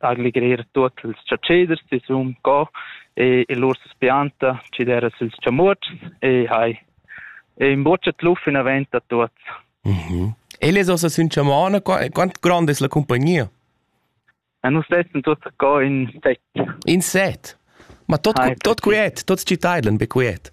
allegrer tuot ils chatscheders sisum co e, e lur spianta chi dera sils chamuotschs e hai e imbuccia tluf in avent a tuots. Mm -hmm. E les ossa sün chamana, quant grande es la compagnia? E nus tessen tuot co in set. In set? Ma tot, tot quiet, tot ci taidlan be quiet.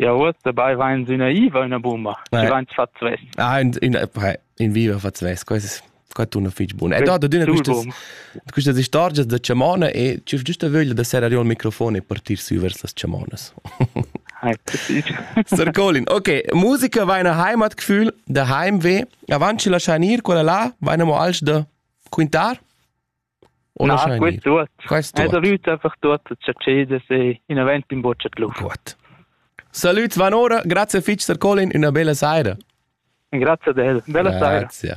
Ja, uoss dabei vains üna iva e üna bumma, chi vains fat svess. Ah, in, in, in viva fat svess, quest quai tuna fich bun. Ed ad adüna quistas quistas istorgias da chamona e tschüf giüsta vöglia da serrar io il microfon e partir sü vers las chamonas. Sir Colin, okay, musica va ina heimatgefühl da Heimweh. Avanti lasciar ir quella là, va ina mo alch da quintar? Una ah, quei tuot. Quest tuot. Salut einfach tuot cha cedes e in avent in boccia club. Gut. Salut Van Ora, grazie fitch Sir Colin, una bella saira. Grazie a te. Bella saira. Grazie.